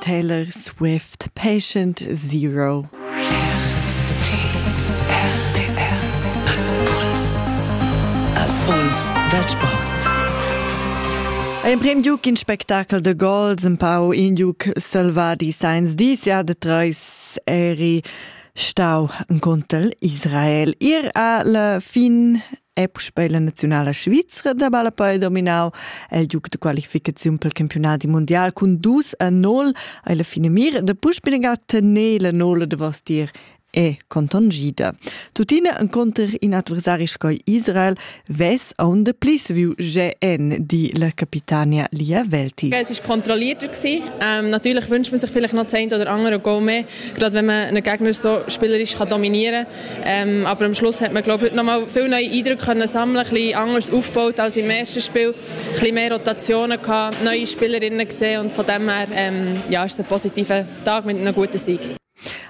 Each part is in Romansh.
Taylor Swift Patient Zero. Impuls da sport. Ein prem giuc in spectacol de gols un pau in giuc selvadi sains disia de treis eri stau en contel Israel. Ir a la fin è puspei la naziunala svizra da ballapei dominau el giug de qualificaziun pel campionati mundial cun dus a nol ei la finamira de puspinega tener la nola de vostier e contongida. Tuttina enconter in adversari sco Israel ves aun de plis viu GN, die la Capitania Lia Velti. Es ist kontrollierter gewesen. Ähm, natürlich wünscht man sich vielleicht noch das eine oder andere Goal mehr, gerade wenn man einen Gegner so spielerisch kann dominieren kann. Ähm, aber am Schluss hat man glaube ich nochmal viel neuen Eindruck können sammeln, ein bisschen anders aufgebaut als im ersten Spiel, ein bisschen mehr Rotationen gehabt, neue Spielerinnen gesehen und von dem her ähm, ja, ist es ein positiver Tag mit einem guten Sieg.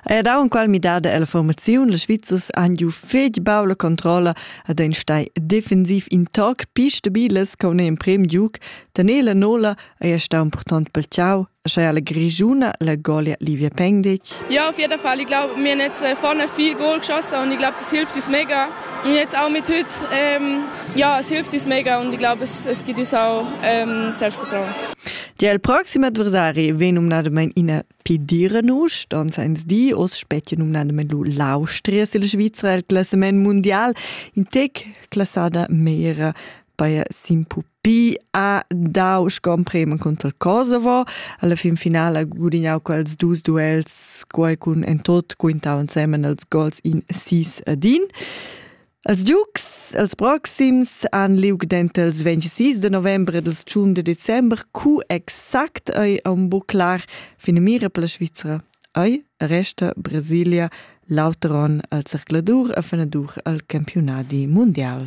Er hat auch in qual midada la formaziun las Svizzers han giu fetg baul controlla ad ein stai defensiv in toc pi stabiles con in prem giuc. Tanela Nola ei stau important pel ciao Sche alla Grigiuna la golia Livia Pengdic. Ja, auf jeden Fall. Ich glaube, wir haben jetzt vorne viel Goal geschossen und ich glaube, das hilft uns mega. Und jetzt auch mit heute, ähm, ja, es hilft uns mega und ich glaube, es, es gibt uns auch ähm, Selbstvertrauen. Del proxime adversari vegn numnadamein ina pediranus, dann seins di os spetje numnadamein lu l'Austria sil Svizra il classament mondial in tec classada meira bei Simpu Pi ha dau scomprema cunter Kosovo. Alla fin finala ha gudignau quels dus duels, quei cun en tot quintau ensemen els gols in sis ad in. Els Dukes, els proxims, han liug denter els 26 de novembre e ils 1 de december, cu exact ei aun buc clar finamira per la Svizra. Ei resta Brasilia l'auter on al zercladur e fenadur al campionadi mundial.